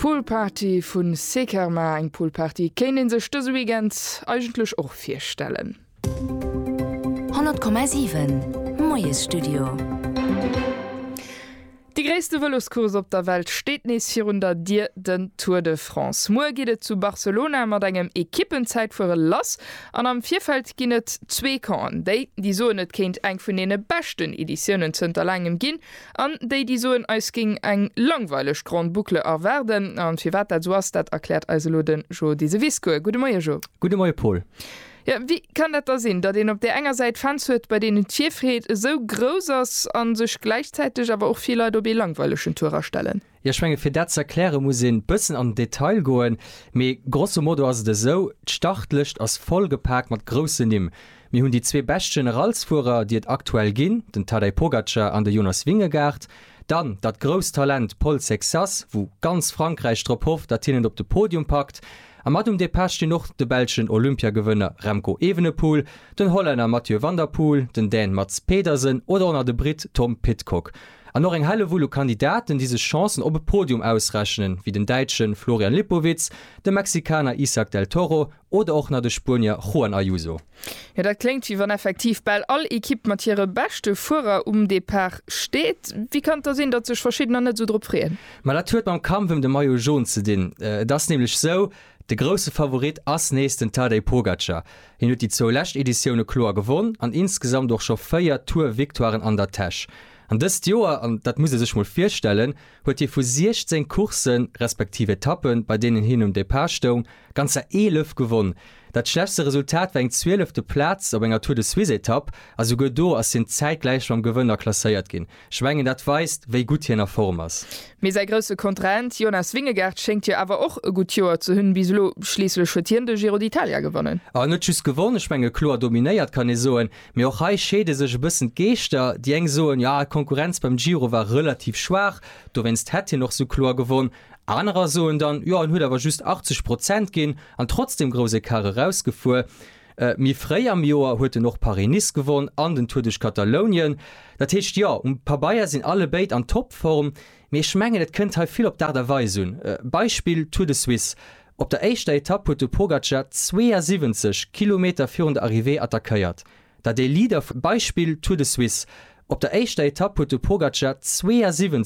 Pool Party vu Sekerma, eng Pool Party kéint een sech dëse Weekend eigentlech och virstellen. 100,7 Moiesstudio. Déi gréisste Vëloscourse op der Welt steet nees virun der Dier, den Tour de France. Muer geet et zu Barcelona mat engem Ekippenzäitfuere lass an am Virfeld ginn et zwee Campen. Déi, déi soen et kéint eng vun deene beschten Editiounen zënter laangem ginn, An déi, déi soen, eis géing eng langweileg Grande Boucle erwaarden. A firwat dat esou ass, dat erkläert eis elo de Jo Diseviscourt. Gudde Moie Jo. Gudde Moie Paul. Jo, wéi kann dat da sinn, datt een op där enger Säit Fans huet, bei deenen d'Virfreed esou grouss ass a sech gläichzäiteg awer och vill Leit op ee langweilegen Tour astellen? Jo, ech menge fir dat ze erkläre muss ee bëssen an den Detail goen, mee grosso modo ass et esou, d'Startlëscht ass voll gepaakt mat groussen Nimm. Mir hunn déi zwee bescht Generalsfuerer, déi et aktuell ginn, den Tadej Pogacar an de Jonas Vingegaard. Dann dat grousst Talent Paul Sexas, wou ganz Frankräich drop hofft, datt hien et op de Podium packt. A mat um Depart stinn och de belschen Olympiagewënner Remco Evenepoel, den Hollänner Mathieu van der Poel, den Dän Mads Pedersen oder och nach de Britt Tom Pidcock. An och eng Hellewull u Kandidaten, déi sech Chancen op e Podium ausrechnen, wéi den Däitsche Florian Lipowitz, de Mexikaner Isak del Toro oder och nach de Spuenier Juan Ayuso. Jo, dat kléngt, wéi wann effektiv bal all Ekipp mat hire beschte Fuerer um Depart steet. Wéi kann et da sinn, datt sech Verschiddener net esou drop freeën? Ma dat huet mam Kampf ëm de Maillot Jaune ze dinn. Et ass nämlech esou, De grousse Favorit ass nees den Tadej Pogacar. Hien huet déi zwou lescht Editioune kloer gewonn an insgesamt och scho véier Tour-Victoiren an der Täsch. An dëst Joer, an dat muss ee sech mol virstellen, huet hie vu 16 Courssen, respektiv Etappen, bei deenen hien um Depart stoung, ganzer 11 gewonn. Dat schlechtste Resultat war eng zwielefte Plaz op enger Tour-de-Suisse-Etapp a souguer do ass hien zäitgläich mam Gewënner klasséiert ginn. Ech mengen dat weist wéi gutt hien a Form ass. Mee säi grousse Kontrahent Jonas Vingegaard schéngt jo awer och e gutt Joer ze hunn bis elo. Schliisslech huet hien de Giro d'Italia gewonnen. A net just gewonn, ech menge kloer dominéiert kann ee soen. Mee och hei scheede sech e bëssen d'Geeschter. Déi eng soen, jo d'Konkurrenz beim Giro war relativ schwaach, dowéinst hätt hien och sou kloer gewonn. Anerer soen dann, jo en huet awer just 80 Prozent ginn an trotzdem grouss Ecart erausgefuer. Méi fréi am Joer huet en och Paris-Nice gewonn an den Tour duerch Katalounien. Dat heescht jo, um Pabeier sinn allebéid an Toppform, mee ech mengen et kënnt hei vill op d'Aart a Weis un. Beispill Tour de Suisse, op der éischter Etapp huet de Pogacar 72 Kilometer virun der Arrivée attackéiert, dat ee Leader vum Beispill Tour de Suisse, op der éischter Etapp huet de Pogacar 72.